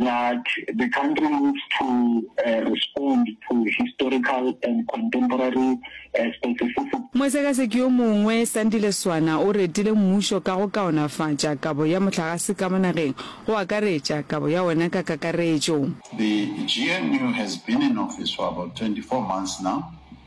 that the country needs to uh, respond to historical and contemporary uh, specific Mosekaseki yo mongwe, Sandile Swana, o retile mmušo ka go kaonafatša kabo ya mohlagase ka mo nageng, go akaretša kabo ya wona ka kakaretšo. The GNU has been in office for about 24 months now,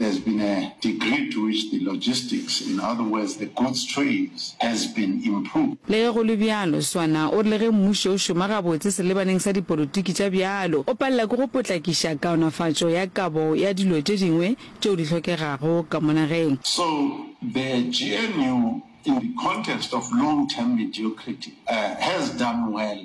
There's been a degree to which the logistics, in other words the goods trains, has been improved. Le ge go le bjalo, Swana o re le ge mmušo o šoma gabotse selebaneng sa dipolotiki tša bjalo, o palela ke go potlakiša kaonafatšo ya kabo ya dilo tše dingwe tšeo di hlokegago ka mo nageng. So the GNU, in the context of long-term mediocrity, has done well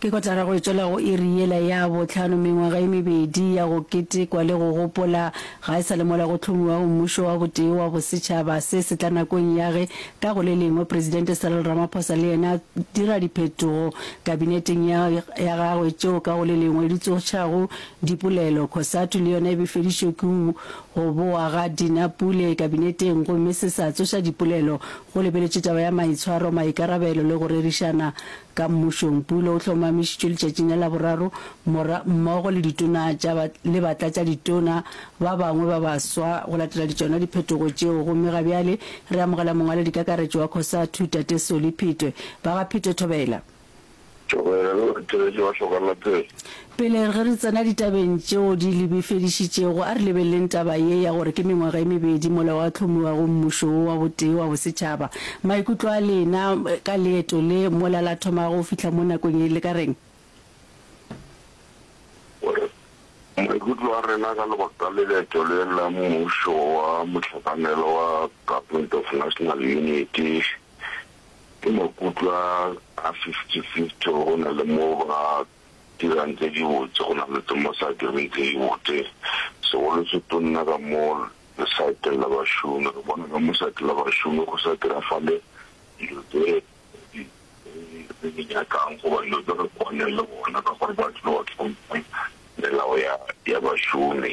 Ke kotara go etšwela go iri yela ya bohlano mengwaga e mebedi ya go ketekwa le go gopola ga e sa le mola go hlomiwago mmušo wa botee wa bosetšhaba. Se se tla nakong ya ge ka go le lengwe Presidente Cyril Ramaphosa le yena dira diphetogo kabineteng ya ya gagwe tšeo ka go le lengwe di tsošago dipolelo. Cosatu le yona e befedišwe ke go bowa ga Dinapule kabineteng gomme se sa tsoša dipolelo Go lebeletše taba ya maitshwaro, maikarabelo le go rerišana ka mmušong, Pulo o hlomamišitšwe letšatšing la Laboraro mora, mmogo le ditona tša ba, le batlatšaditona ba bangwe ba baswa go latela di tšona diphetogo tšeo gomme ga bjale re amogela Mongwaladikakaretšo wa Cosatu, Tate Solly Phitwe. Ba ga Phitwe Thobela. Joel, Theetša wa hloka la Theetša. Pele ge re tsena ditabeng tšeo di lebefedišitšego, a re lebeleleng taba ye ya gore ke mengwaga e mebedi mola gwa hlomiwa go Mmušo wo wa botee wa bosetšhaba. Maikutlo a lena ka leeto le, mola la thoma go fihla mo nakong ye, le ka reng? Gore, Maikutlo a rena ka lebaka la leeto le la Mmušo wa Mohlakanelwa wa Government of National Unity Ke makutlwa a fifty-fifty gore go na le mo ba dirang tse dibotse go na le tse mo sa direng tse dibotse. Segolo se tonna ka mo lesaeteng la bašomi, re bona ka mo saete la bašomi go sa diragale dilo tse re di nyakang goba dilo tse re kwaneng le bona ka gore ba tlile go tlhompha melao ya bašomi.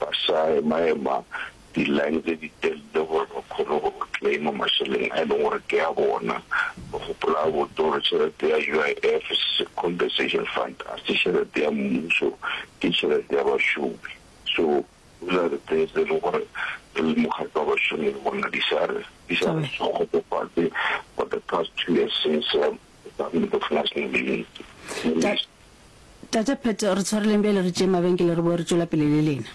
ba sa emaema di-line tse ditelele gore ba kgone go claim-a mašeleng a e leng gore ke a bona. Ba gopola gabotse gore tšhelete ya UIF, Compensation Fund, ga se tšhelete ya mmuso, ke tšhelete ya bašomi. So those are the things tse e leng gore re le mokgatlo wa bašomi re bona di sa re kgotsofatse for the past two years since Ta, Tate Pat, re tshwareleng bjale re tšee mabenkele re boe re tšwela pele le lena.